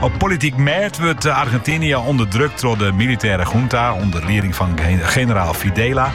Op polityk mêd wurdt Argentinië ûnderdrukt troch de militêre junta ûnder lieding fan generaal Videla.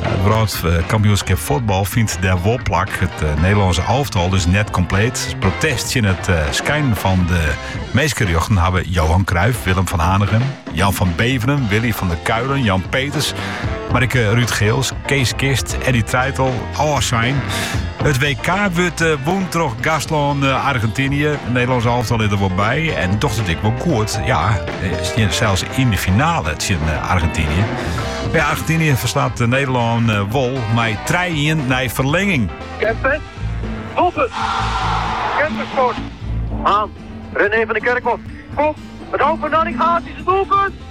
It wrâldkampioenskip fuotbal fynt der wol plak. It eh, Nederlânske alftal is net kompleet. Protest tsjin it eh, skeinen fan de minskerjochten hawwe Johan Cruijff, Willem van Hanegem, Jan van Beveren, Willy van der Kuijlen, Jan Peters, mar ek Ruud Geels, Kees Kist, Eddy Treijtel, Ôfsein. It WK wurdt eh, wûn troch gastlân eh, Argentinië. Nederlânsk alftal is der wol by en docht it ek wol goed. Ja, eh, steane sels yn de finale tsjin Argentinië. Ja, Argentinië ferslaat Nederlân wol mei 3-1 nei ferlinging. Kempes, Wolfert, Kempes scoort. Haan, René van de Kerkhof, kom, het hoofd van Nanninga, dat is het doelpunt!